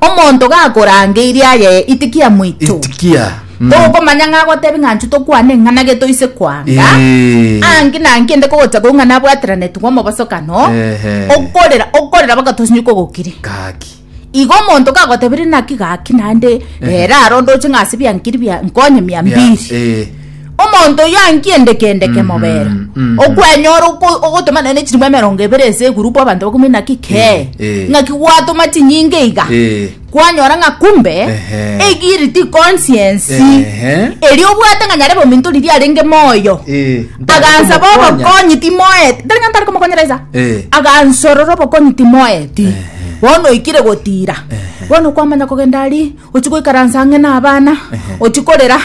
Omonto gakorangeirie ayeye itikia moito. Itikia. Mm. Togokomanya ng'a agotebi ng'a nchu tokwane eng'ana ge toise kwanga. Eh. Anki na anki ende kogocha kogwa ng'a nabwateranetigwe omobosokano. Ehe. Okorera, okorera baka tosinye kogokire. Gaki. Igo omonto gagotebire naki gaki naende, Eh. ere arondoche ng'a ase biankiri bia nkonye mia Bia- mbiri. eh. Omonto oyio ankiendeke-endeke mm-hmm. mobere mm-hmm. okwenyora ogotoma nene chirimo emerongo ebere ase egurupu abanto bakumi naki eh, ke eh. ng'aki gwatoma chinyinge iga eh. kwanyora ng'a kumbe egiriti consciensi eri obwate ng'a nyare bominto riri arenge moyo agansa bobokonyi timoeti tari ng'a ntari komokonyera isa agansorora obokonyi timoeti bono oikire gotira bono kwamanya kogenda ari ochia goikaransa ang'e na abana Ehe. ochia korera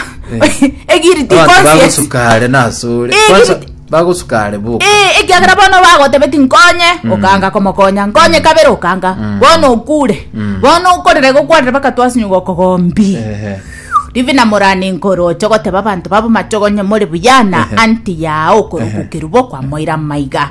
egiri ti Abantu conscious bagosuka are nasore Eh, Kwanza, giri- bagosuka are boka Eh, ekiagera bono bagotebeti nkonye okanga komokonya nkonye kabere okanga bono okure bono okorere gokwarire bakatwasinyuga okogombi Ehe. rivi na morani nkoro oche goteba abanto babo machogonye more buyana anti yao okorugukeru bokwamoira maiga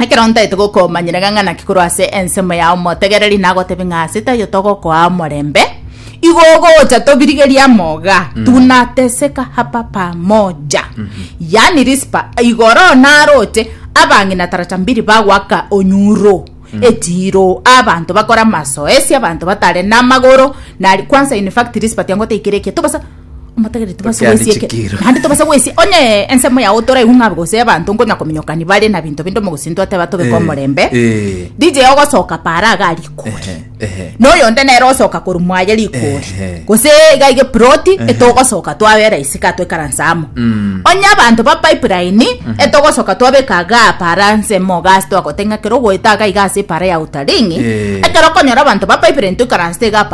Ekero ntaete gokomanyera ng'a ng'a naki korwa ase ensemo yao motegereri, nagotebie ng'a ase taiyo togokoa omorembe, igo ogocha tobirigerie amo iga, tunateseka hapa pamoja. Yaani Rispa, igo oroo naroche, abang'ina tarata mbiri bagoaka onyuro, echiro, abanto bakore amasoesi, abanto batare namagoro, nari kwanza in fact Rispa tiangoteikera eketo bosa. omotegereri tobasa Okiandi goesia eke- chikiro. naende tobasa goesia onye ensemo yao toraiwu ng'a gose abanto ngonya kominyokani bare na binto binde omogosinto ateba tobeka Eh, omorembe eh. dj ogosoka para aga arikori Ehe, ehe. noyo onde nere osoka koru mwaye rikori Ehe. gose iga ige proti etogosoka twabera isika twekaransa amo onye abanto ba pipeline etogosoka twabeka aga para nsemo gasi twagoteng'a kero goeta aga iga ase para ya utaringi Eh. ekero okonyora abanto ba pipeline toikaransa iga